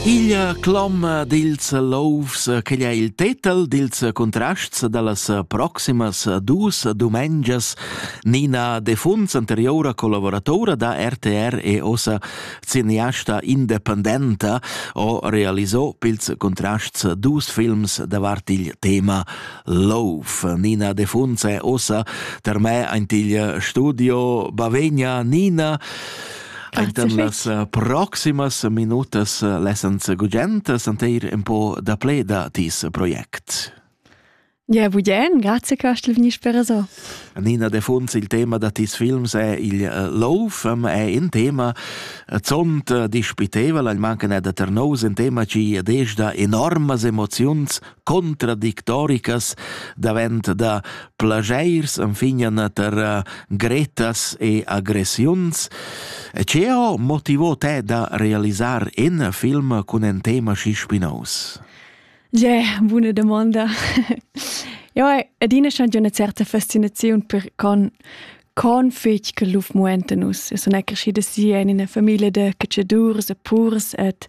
Igl cloma dils louvs che ha il tetel dils contrasts dallas proximas dus dumengias Nina Defuns, anteriora collaboratora da RTR e ossa cineasta independenta, ho realisò pils contrasts dus films davart il tema love. Nina Defuns è ossa ter me aint il studio Bavegna. Nina, Ainten las eh, proximas minutas eh, lessans gugent senteir un po da ple da tis project. Ja, budien, grazie che hast veniš per so. Nina de Funz, il tema da tis films è il eh, Loaf, è un tema zont dispitevole, il manca da ternos, un tema ci desda enormas emozions contradictoricas davent da plagiers anfignan tar eh, gretas e aggressiuns. E che ho motivo te da realisar in film cun un tema schi spinaus? Ge, buona domanda. Ja, adina schon una certa fascinazione per con con fetg che luf muentenus. Es un acrescida sia in una famiglia de cacciadurs e purs et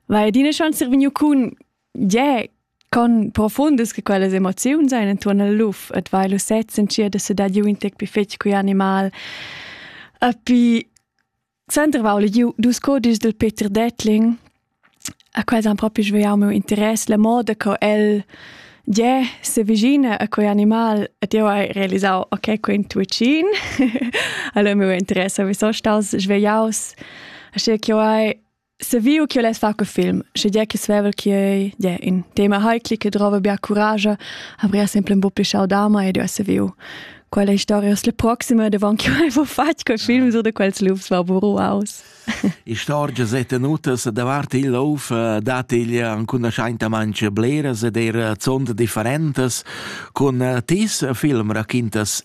vai adina schon servinu cun Yeah, con profundas che quellas emoziuns ein intuorn al luf et vai lu sez sentir de sedar giu in tec pi fetg cu animal. E pi Sandra va legiu dus codis del Peter Detling, a quels han propi svegliau meu interess, la moda co el yeah, se vigina a quei animal et io hai realisau ok, quei intuicin. allora meu interesse vi so staus svegliaus, asche che io hai Se viu ch'io less far que film, sche dia che svevel chi ei, dia in tema heikli che drova bia courage, avria sempre un po' più schaudama ed io se viu. Quella historia sulle proxime, davon che avevo fatto quel film, so da quels lufs va pur aus. Istorgia se tenutas davart il luf eh, dat il cunoscente manche bleras ed er zond differentes con eh, tis film raquintas